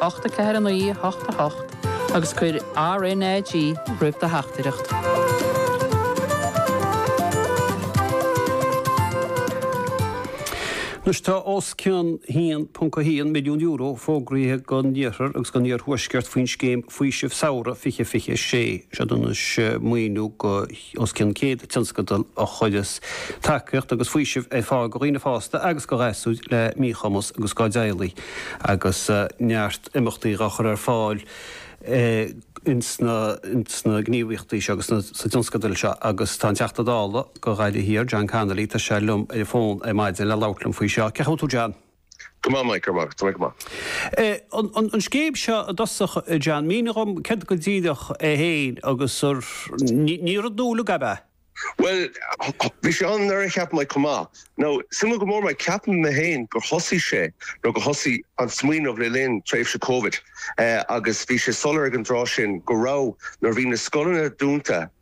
ocht a ceathair a naoi a hocht a hocht agus cuir RNAG roimh do theachtaireacht. Anois tá os cionn €1.1 milliún fógraithe don Iarthar agus don Iarthuaisceart faoin scéim Faoiseamh Samhraidh 2026. Seo maoiniú go. os cionn 100 tionscadal a chuireas tacaíocht agus faoiseamh ar fáil go dhaoine fásta agus go ghasúir le míchumas agus dá dteaghlaigh agus neart imeachtaí á chur ar fáil ins na gníomhaíochtaí seo agus sna tionscadail seo agus tá an Teachta Dála go Ghaillimh Thiar, John Connolly, tá sé liom ar an bhfón ar maidin le labhairt liom faoi seo. Cén chaoi a bhfuil tú John? Go maith Mike, go maith, tá mé go maith. An scéim seo i dtosach a John, mínigh dhom céard go díreach í féin agus ní rud nua í, ab ea? Bhuel, bhí sé ann anuraidh ceapaim Mike chomh maith. Nó, suimiúil go leor Mike, ceapaim mé féin gur thosaigh sé, nó gur thosaigh an smaoineamh le linn tréimhse Covid agus bhí sé soiléir ag an dtráth sin go raibh, nuair a bhí na scoileanna dúnta,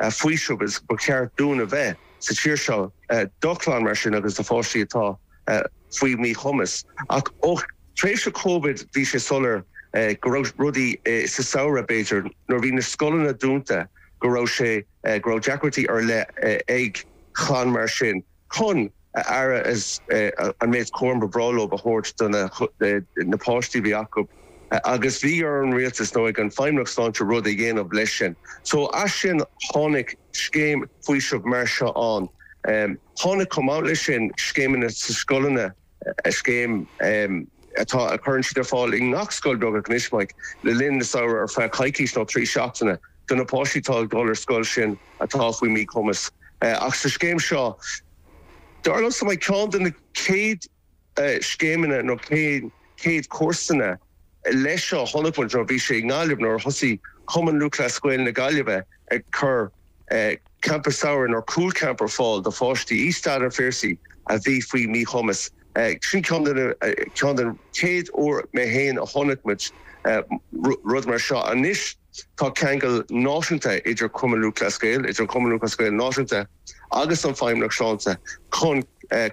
faoiseamh is gur cheart dúinn a bheith sa tír seo do chlann mar sin agus do pháistí atá faoi mhíchumas. Ach ó thréimhse Covid bhí sé soiléir go raibh rudaí, sa samhradh b'fhéidir nuair bhí na scoileanna dúnta, go raibh sé, go raibh deacrachtaí ar leith ag chlann mar sin. chun an aire is an méid cúram ba bhreá leo a thabhairt do na páistí a bhí acu agus bhí ar an rialtas nó ag an Feidhmeannacht Sláinte rud a dhéanamh leis sin. So as sin tháinig scéim faoisimh mar seo ann. Tháinig chomh maith leis sin scéimeanna sa scoileanna. scéim atá a chuireann siad ar fáil i ngach scoil beagnach anois, Mike, le linn an tsamhraidh ar feadh coicís nó trí seachtaine do na páistí atá ag dul ar scoil sin atá faoi mí-chumas ach sa scéim seo dar liomsa Mike ceann de na céad scéimeanna nó na céad cúrsaí leis seo a chonaic muid nó bhí sé i nGaillimh nuair a thosaigh Cumann Lúthchleas Gael na Gaillimhe ag cur Campa Samhraidh nó Cúl Camp ar fáil do pháistí i Staid an Phiarsaigh a bhí faoi mhíchumas. Sin ceann den chéad uair mé fhéin a chonaic muid rud mar seo. Anois tá ceangal náisiúnta idir Cumann Lúthchleas Gael, idir an Cumann Lúthchleas Gael Náisiúnta agus an Feidhmeannacht Shláinte chun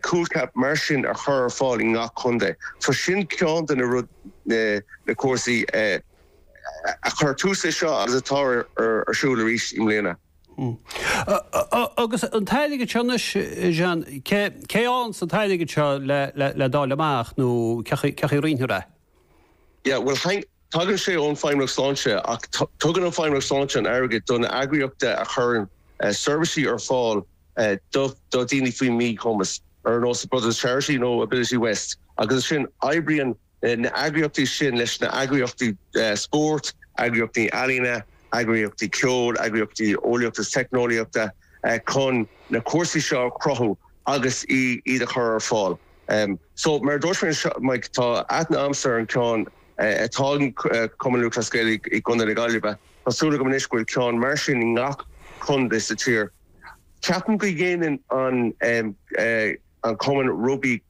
cúl camp mar sin a chur ar fáil i ngach contae. So sin ceann de na rud, na cúrsaí. a chuir tús leis seo agus atá ar siúl arís i mbliana. Agus an t-airgead seo anois, a John, cén chaoi a bhfuil an t-airgead seo le dáileadh amach nó cén chaoi a roinntear é? Yeah, bhuel, tagann sé ón Feidhmeannacht Sláinte ach tugann an Feidhmeannacht Sláinte an airgead do na heagraíochtaí a chuireann seirbhísí ar fáil do dhaoine faoi mhíchumas, ar nós Brothers of Charity nó Ability West, agus ansin oibríonn na eagraíochtaí sin leis na heagraíochtaí spóirt, eagraíochtaí ealaíne, eagraíochtaí ceoil, eagraíochtaí eolaíochta is teicneolaíochta chun na cúrsaí seo a chruthú agus iad a chur ar fáil. So mar a dúirt mé, tá aithne agamsa ar an ceann atá ag Cumann Lúthchleas Gael i gContae na Gaillimhe. Tá súil agam anois go bhfuil ceann mar sin i ngach contae sa tír. Ceapaim go dhéanann an cumann rugbaí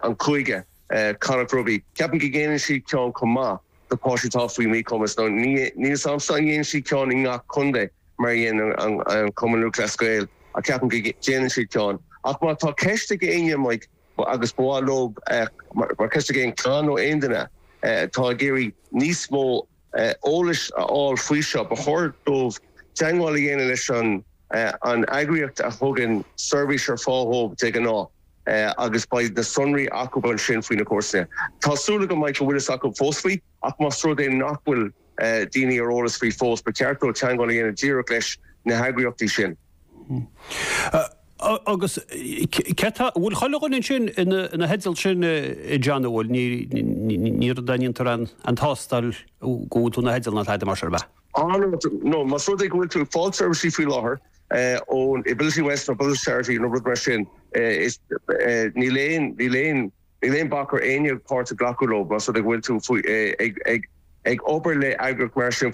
an chúige, Connacht Rugby. Ceapaim go ndéanann siad ceann chomh maith do páistí atá faoi mhíchumas nó níl a fhios agam an ndéanann siad ceann i ngach contae mar a dhéanann an Cumann Lúthchleas Gael ach ceapaim go ndéanann siad ceann. Ach má tá ceist ag éinne agus ba mhaith leo mar ceist ag aon chlann nó aon duine atá ag iarraidh níos mó eolais a fháil faoi seo. Ba chóir dóibh teagmháil a dhéanamh leis an eagraíocht a thugann seirbhís ar fáil dhóibh de ghnáth agus beidh na sonraí acu ansin faoi na cúrsaí. Tá súil agam go mbeidh, go bhfuil fhios acu fós faoi ach más rud é nach bhfuil daoine ar eolas faoi fós, ba cheart dóibh teagmháil a dhéanamh díreach leis na heagraíochtaí sin. Agus bhfuil chuile dhuine ansin ina theideal sin, a John, an bhfuil? Ní dhéantar an tástáil go bhfuil tú ina theideal ná tada mar sin, ab ea? Á no, no, más rud é go bhfuil tú ag fáil seirbhísí faoi láthair ón Ability West nó Brothers Charity nó rud mar sin, níl aon, níl aon, níl aon bac ar éinne páirt a ghlacadh leo más rud é go bhfuil tú ag obair le heagraíocht mar sin.